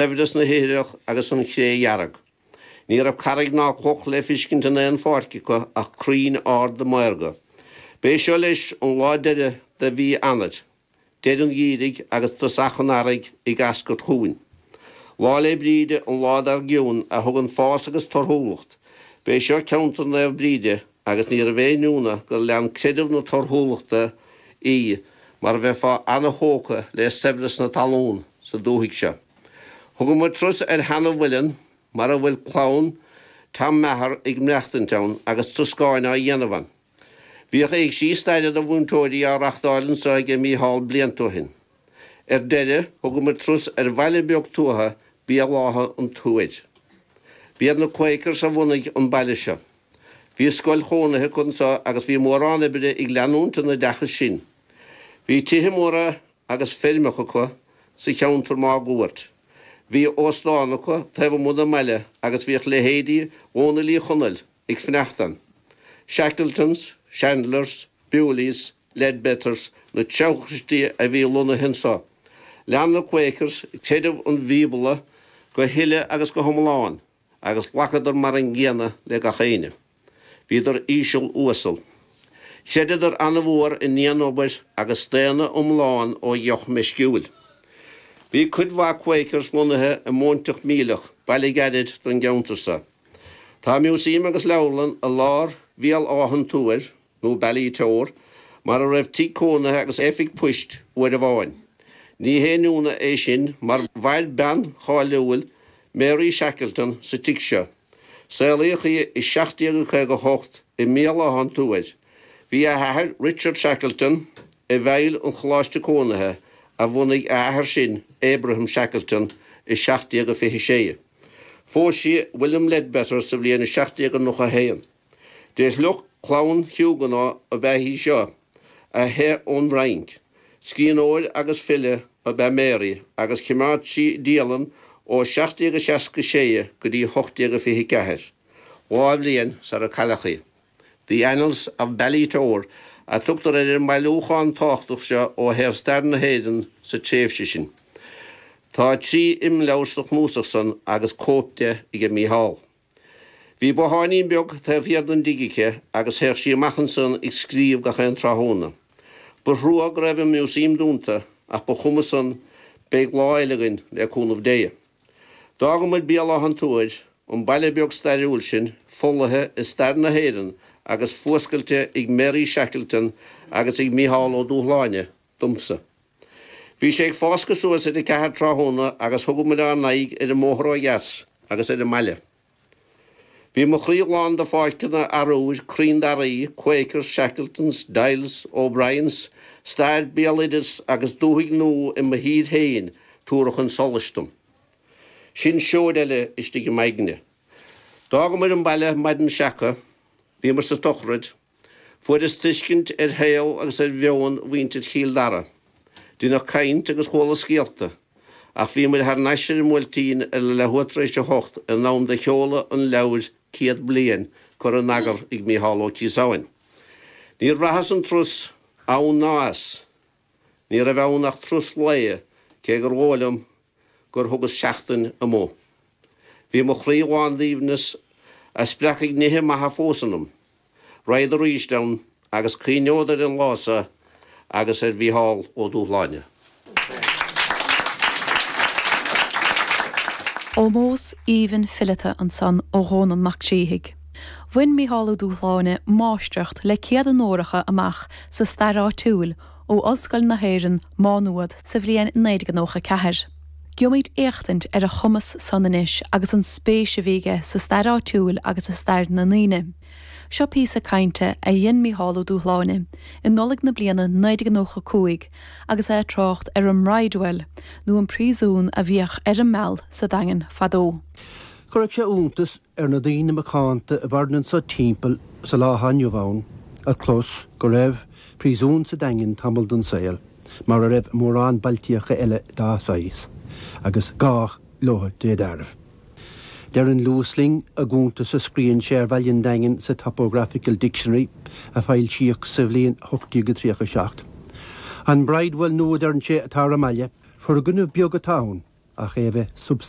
Saibhreas na hithreach agus an chré dhearg. Ní raibh carraig ná cloch le feiscint in aon pháirc acu ach crainn arda maorga. B'é seo, leis, an lá deireadh de mhí Eanair, deireadh an Gheimhridh agus tosach an Earraigh ag eascairt chugainn. Lá 'le Bríde, an lá dar gcionn, a thugann fás agus torthúlacht. B'é seo ceantar Naomh Bríde, Agus níorbh aon ionadh gur lean creideamh na torthúlachta í mar bheifeá ana-thógtha le saibhreas na talún sa dúthaigh seo. Thugadh muid turas ar sheana-mhuileann mar a bhfuil clann Tom Meagher ag maireachtaint ann agus troscáin á dhéanamh ann. Bhíodh éigsí staire do mhúinteoirí á reachtáil anseo aige Micheál blianta ó shin. Ar deireadh thugadh muid turas ar bhaile beag tuaithe Béal Átha an Tuair. B'iad na Quakers a bhunaigh an baile seo. Bhí scoil chónaithe acu anseo agus bhí mórán oibre ag leanúint an oideachais sin. Bhí tithe móra agus feirmeacha acu sa cheantar máguaird. Bhí óstán acu taobh amuigh den mbaile agus bhíodh leithéidí Dhónaill Uí Chonaill ag fanacht ann. Shackletons, Chandlers, Bewleys, Leadbeaters na treabhchaistí a bhí lonnaithe anseo. Lean na Quakers creideamh an Bhíobla go huile agus go hiomlán. Agus ghlacadar mar an gcéanna le gach éinne. Bhíodar íseal uasal. Chreideadar an-mhór i ndianobair agus staonadh iomlán ó dheoch meisciúil. Bhí cuid mhaith Quakers lonnaithe i Móinteach Mílic, baile gairid don gceantar seo. Tá Museum agus Leabharlann i lár Bhéal Átha an Tuair. nó Ballitore, mar a raibh tigh cónaithe agus oifig poist uair amháin. Ní haon ionadh é sin mar mhair bean cháiliúil, Mary Shackleton, sa tigh seo. Saolaíodh í i 1758 i mBéal Átha an Tuair. Bhí a hathair, Richard Shackleton, i bhfeighil an choláiste cónaithe a bhunaigh a athair sin, Abraham Shackleton, i 1726. Phós sí William Leadbeater sa bhliain 1791. De shliocht clann Huguenot ab ea í seo, a theith ón bhFrainc. Scríbhneoir agus file ab ea Mary agus choimeád sí dialann ó 1766 go dtí 1824, dhá bhliain sar a cailleadh í. The Annals of Ballitore a tugtar ar an mbailiúchán tábhachtach seo ó thaobh stair na hÉireann sa tréimhse sin. Tá trí imleabhar sa chnuasach san agus cóip de aige Micheál. Bhí botháinín beag taobh thiar den dtigh aici agus théadh sí amach ansan ag scríobh gach aon tráthnóna. Ba thrua go raibh an Museum dúnta ach ba chuma san, beidh lá eile againn le cúnamh Dé. D'fhága muid Béal Átha an Tuair, an baile beag stairiúil sin, folaithe i stair na hÉireann agus fuascailte ag Mary Shackleton agus ag Micheál Ó Dúshláine, domsa. Bhí sé ag fáscadh suas ar a ceathair tráthnóna agus thug muid ár n-aghaidh ar an mbóthar ó dheas agus ar an mbaile. Bhí mo chroí lán de pháirceanna arúir, crainn daraí, Quakers, Shackletons, Doyles, O'Briens, stair, béaloideas agus dúthaigh nua i mo thír féin tabhartha chun solais dom. Sin seoid eile istigh i m'aigne. D'fhágamar an baile maidin seaca. Bhíomar sa tsochraid. Fuaireas tuiscint ar shaol agus ar mheon mhuintir Chill Dara. Deineadh caint agus chuala scéalta, ach bhí muid thar n-ais ar an mBuailtín ar a leath uair tar éis a hocht in am do sheoladh an leabhair Céad Bliain curtha in eagar ag Micheál Ó Ciosáin. Níor bhraitheas an turas ann ná as. Ní raibh ann ach turas lae, cé gur dhóigh liom gur thugas seachtain amuigh. Bhí mo chroí lán d'aoibhneas a spreagfaidh nithe maithe fós ionam. Raghad arís ann agus cuimhneod ar an lá so agus ar Mhícheál Ó Dúshláine. Ómós aoibhinn fileata ansan ó Dhónall Mac Síthigh. Bhain Mícheál Ó Dúshláine máistreacht le céad onóracha amach sa Stair Áitiúil ó Ollscoil na hÉireann, Má Nuad, sa bhliain 1994. Gheobhaimid éachtaint ar a chumas san anois agus an spéis a bhí aige sa stair áitiúil agus i stair na ndaoine. Seo píosa cainte a dhein Mícheál Ó Dúshláine i Nollaig na bliana 1995 agus é ag trácht ar an mBridewell nó an príosún a bhíodh ar an Meal sa Daingean fadó. Chuirfeadh sé iontas ar na daoine macánta a mhaireann anso timpeall sa lá atá inniu ann, a chlos go raibh príosún sa Daingean tamall den saol, mar a raibh i mórán bailtíocha eile dá saghas, agus gá leo de réir dealraimh. Deireann Lewis linn i gcuntas a scríobhann sé ar Bhaile an Daingin sa Topographical Dictionary a foilsíodh sa bhliain 1837, 'An bridewell nua a deireann sé atá ar an mbaile, foirgneamh beag atá ann, ach é a bheith substaintiúil.